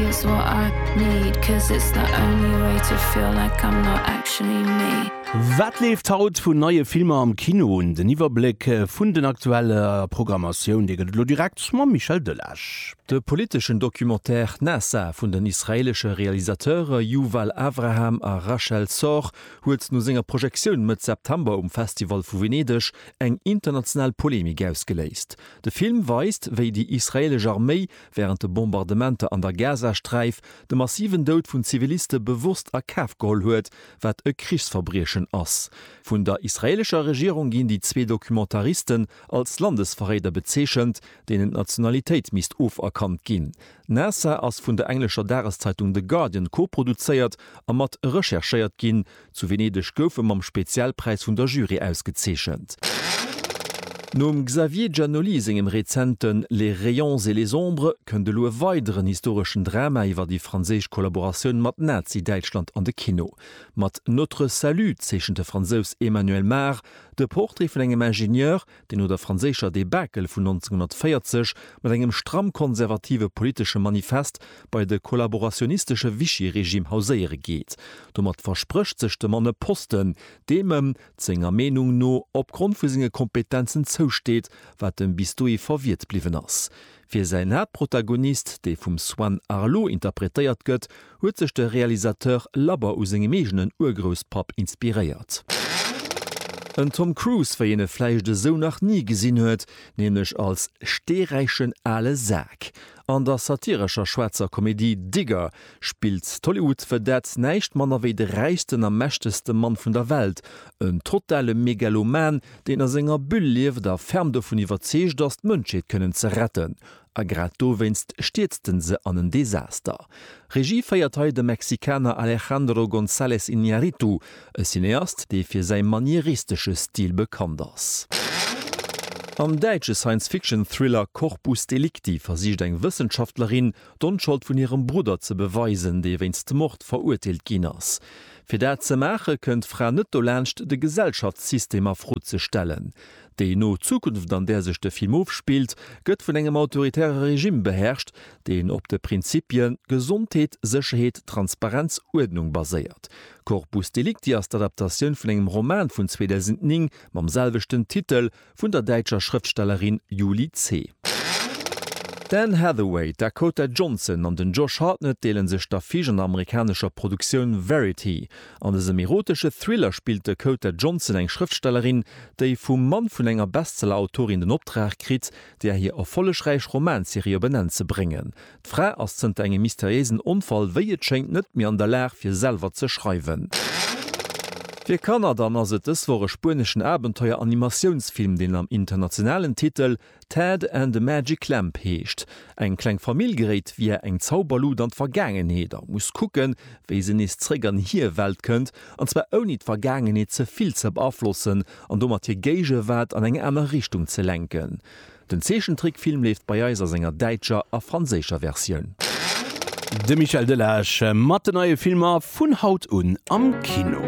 Here's what I need, 'cause it's the only way to feel like I'm not actually me. Wat leeft haut vun neie Filmer am Kino? Den Iwwerbléck vun den aktuelle Programmatioun, dee gëtt et elo direkt mam Michel Delage. De politeschen Documentaire Nasa vun den israeelesche Realisateure Yuval Avraham a Rachel Sorg huet no senger Projektioun Mëtt September um Festival vu Venedeg eng international Polemik ausgeléist. De Film weist, wéi déi israeelesch Arméi wärend de Bombardementer an der Gazasträif de massiven Doud vun Ziviliste bewosst a Kaf geholl huet, wat e Krichsverbriechen ass. Vun der israeelescher Regierung ginn déi zwee Documentaristen als Landesverréider bezeechent, deenen d'Nationalitéit misst oferkannt ginn. Naassar ass vun der englescher Dageszeitung The Guardian koproduzéiert a mat recherchéiert ginn. Zu Venedeg gouf e mam Spezialpräis vun der Jury ausgezeechent. Nom Xavier Giannoli sengem rezenten Les rayons et les ombres kënnt elo e weideren historeschen Drama iwwer déi franséisch Kollaboratioun mat Nazi-Däitschland an de Kino. Mat Notre salut zeechent de Fransous Emmanuel Mar de Portrait vun engem Ingenieur, déi no der franséischer Debakel vun 1940 mat engem stramm konservative politesche Manifest bei de kollaborationistesche Vichy-Regime hauséiere geet. Domat versprécht sech de Mann e Posten, deem ëm, senger Meenung no, opgrond vu senge Kompetenzen zousteet, wat ëm bis dohi verwiert bliwwen ass. Fir säin Haaptprotagonist, dee vum Swan Arlo interpretéiert gëtt, huet sech de Realisateur labber u sengem eegenen Urgrousspapp inspiréiert. En Tom Cruise, wéi een e vläicht esou nach ni gesinn huet, nämlech als steeräichen ale Sak an der satirescher schwaarzer Komedie Digger, spillt d'Hollywood Vedette näischt manner wéi de räichsten a mächtegste Mann vun der Welt, en totale Megaloman, deen a senger Bulle lieft a ferm dovun iwwerzeegt ass, d'Mënschheet kënnen ze retten. A grad dowéinst stierzt en se an en Desaster. Regie féiert hei de Mexikaner Alejandro González Iñárritu, e Cineast, dee fir säi manieristesche Stil bekannt ass. Am däitsche Science-Fiction-Thriller Corpus Delicti versicht eng Wëssenschaftlerin, d'Onschold vun hirem Brudder ze beweisen, dee wéinst Mord verurteelt ginn ass. Fir dat ze maache kënnt d'Fra net dolaanscht, de Gesellschaftssystem a Fro ze stellen. Déi no Zukunft, an där sech de Film ofspillt, gëtt vun engem autoritäre Regime beherrscht, deen op de Prinzippie Gesondheet, Sécherheet, Transparenz, Uerdnung baséiert. Corpus Delicti ass d'Adaptatioun vun engem Roman vun 2009 mam selwechten Titel Vun der däitscher Schrëftstellerin Julie C. D'Anne Hathaway, d'Dakota Johnson an den Josh Hartnett deele sech d'Affiche an der amerikanescher Produktioun Verity. An dësem erotesche Thriller spillt d'Dakota Johnson eng Schrëftstellerin, déi vum Mann vun enger Bestseller-Autorin den Optrag kritt, där hir erfollegräich Romanserie op en Enn ze bréngen. D'Fra ass zënter engem mysteriéisen Onfall, wéi et schéngt, net méi an der Lag, fir selwer ze schreiwen. Fir Kanner dann ass et dës Woch e spueneschen Abenteuer-Animatiounsfilm, deen am internationalen Titel Ted and the Magic Lamp heescht. Eng kleng Famill geréit via eng Zauberlut an d'Vergaangenheet a muss kucken, wéi se nees zeréck an hir Welt kënnt, an zwar ouni d'Vergaangenheet ze vill ze beaflossen an domat hir Géigewaart an eng aner Richtung ze lenken. Den Zeechentrickfilm leeft bei eis a senger däitscher a franséischer Versioun. De Michel Delage mat de neie Filmer vun haut un am Kino.